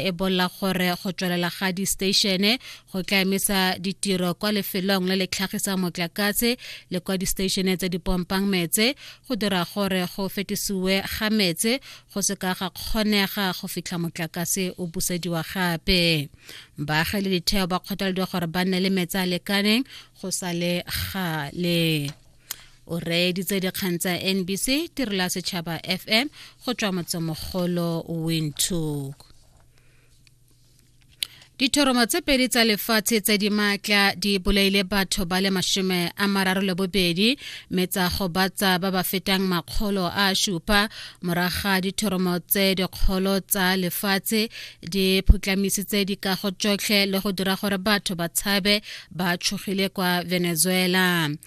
e bolla gore go tswelela ga di-statione go tla emisa ditiro kwa lefelong le le tlhagisang motlakase le kwa di-statione tse di pompang metse go dira gore go fetisiwe ga metse go se ka ga kgonega go fitlha motlakase o busediwa gape baagi le ditheo ba kgothalediwa gore ba nne le metsi a lekaneng go sa le gale o reeditse dikgang tsa nbc tirela setšhaba fm go tswa motsemogolo windhoek dithoromo tse pedi tsa lefatshe tse di maatla di bolaile batho ba le mashome a mararo le bobedi mme tsa gobatsa ba ba fetang makgolo a supa moraga dithoromo tse dikgolo tsa lefatshe di phutlamisitse dikago tsotlhe le go dira gore batho ba tshabe ba tshogile kwa venezuela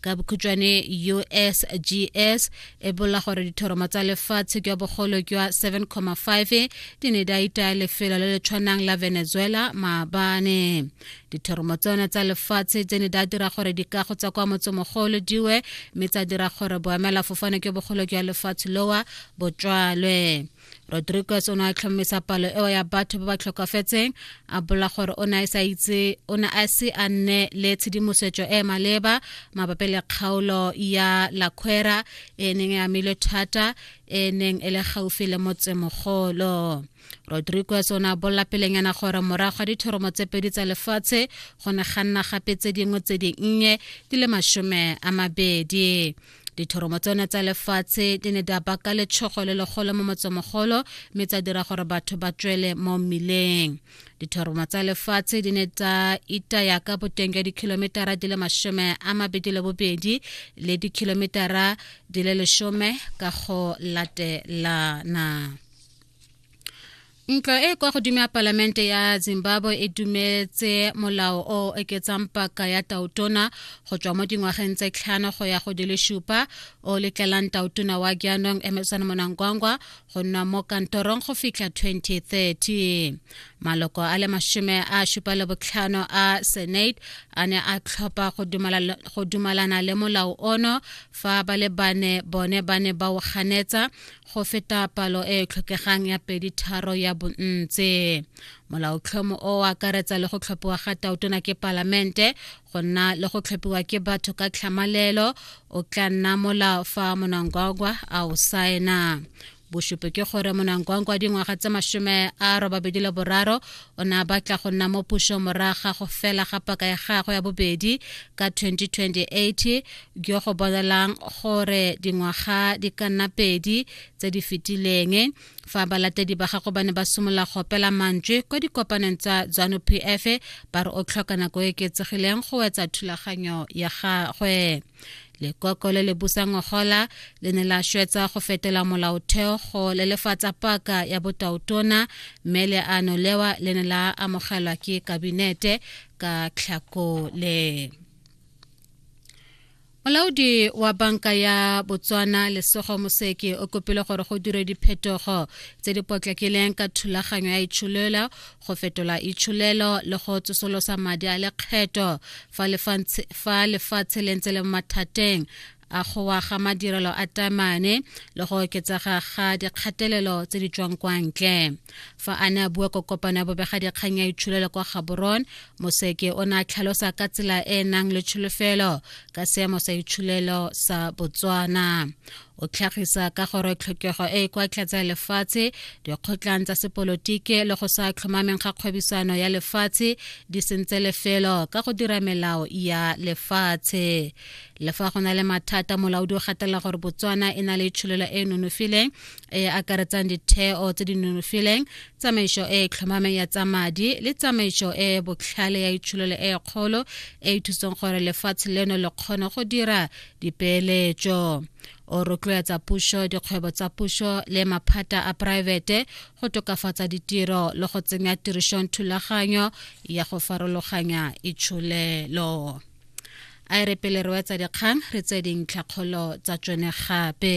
ka bokhutšwane usgs e bolla gore dithoromo tsa lefatshe ke ya bogolo ke wa 7,5 di ne di a itaya lefelo le le tshwanang la venezuela maabane dithoromo tsone tsa lefatshe tse ne di a dira gore dikago tsa kwa motsemogolo diwe mme tsa dira gore boemela fofane ke bogolo ke ya lefatshe lowa botswalwe rodriguez o ne a tlhomamisa palo eo ya batho ba ba tlhokafetseng a bola gore o ne a sa itse o ne a se a nne le tshedimosetso e e maleba mabapi le kgaolo ya laquera e neng e amilwe thata e neng e le gaufi le motsemogolo rodriguez o ne a bolela pelenyana gore morago ga dithoromo tse pedi tsa lefatshe go ne ga nna gape tse dingwe tse dinnye di le masome a mabedi dithoromo tsone tsa lefatshe di ne di baka letshogo le legolo mo motsomogolo mme tsa dira gore batho ba tswele mo mmileng dithoromo tsa lefatshe di ne tsa itaya ka boteng jwa dikhilometara di le masome a mabedi le bobedi le dikhilometara di le lesome ka go latelana Ntlo e kwa godimo ya palamente ya Zimbabwe e dumetse molao o oketsang paka ya tautona go tswa mo dingwageng tse tlhano go ya go di le supa o letlelang tautona wa jaanong Emerson Monangwangwa go nna mo kantorong go fitlha 2030 maloko a le mashome a supa le botlhano a senate a ne a tlhopha go dumalana le molao ono fa ba le bane bone ba ne ba o ganetsa go feta palo e e tlhokegang ya pedi tharo ya bontse molaotlhomo o o akaretsa le go tlhophiwa ga taotona ke palamente go nna le go tlhophiwa ke batho ka tlhamalelo o tla nna molao fa monangwangwa a o saena bosupi ke gore monangwangwa dingwaga tse masome a robabedi le boraro o ne a batla go nna mo puso moraga go fela ga paka ya gagwe ya bobedi ka 2028 jo go bolelang gore dingwaga di ka nna pedi tse di fetileng fa balatedi ba gago ba ne ba simolola go opela mantswe kwa dikopaneng tsa zanu p f ba re o tlhoka nako e ketsegileng go wetsa thulaganyo ya gagwe lekoko le le busang ngogola le ne la shwetsa go fetela molaotheo go lelefatsa paka ya botaotona mme leano lewa le ne la amogelwa ke kabinete ka tlhakole molaodi wa banka ya botswana lesogo moseke o kopile gore go dire diphetogo tse di potlakileng ka thulaganyo ya itsholelo go fetola itsholelo le go tsosolosa madi a lekgetho fa lefatshe le ntse le mathateng a go wa ga madirelo a tamane le go oketsega ga dikgatelelo tse di tswang kwa ntle fa a ne a bua ko kopano ya bobega dikgang ya itshulelo kwa gaborone moseke o ne a tlhalosa ka tsela e e nang le tsholofelo ka seemo sa itshulelo sa botswana o tlhagisa ka gore tlhokego e e kwa tlatsa ya lefatshe dikgotlang tsa sepolotiki le go sa tlhomameng ga kgwebisano ya lefatshe di sentse lefelo ka go dira melao ya lefatshe le fa go na le mathata molaodi o gatelela gore botswana e na le tsholelo e e nonofileng e akaretsang ditheo tse di nonofileng tsamaiso e e tlhomameng ya tsa madi le tsamaiso e e botlhale ya itshololo e e kgolo e e thusang gore lefatshe leno le kgone go dira dipeeletso o rotloetsa puso dikgwebo tsa puso le maphata a poraefete go tokafatsa ditiro le go tsenya tirisong thulaganyo ya go farologanya itsholelo a e re pele re wetsa dikgang re tse dintlhakgolo tsa tsone gape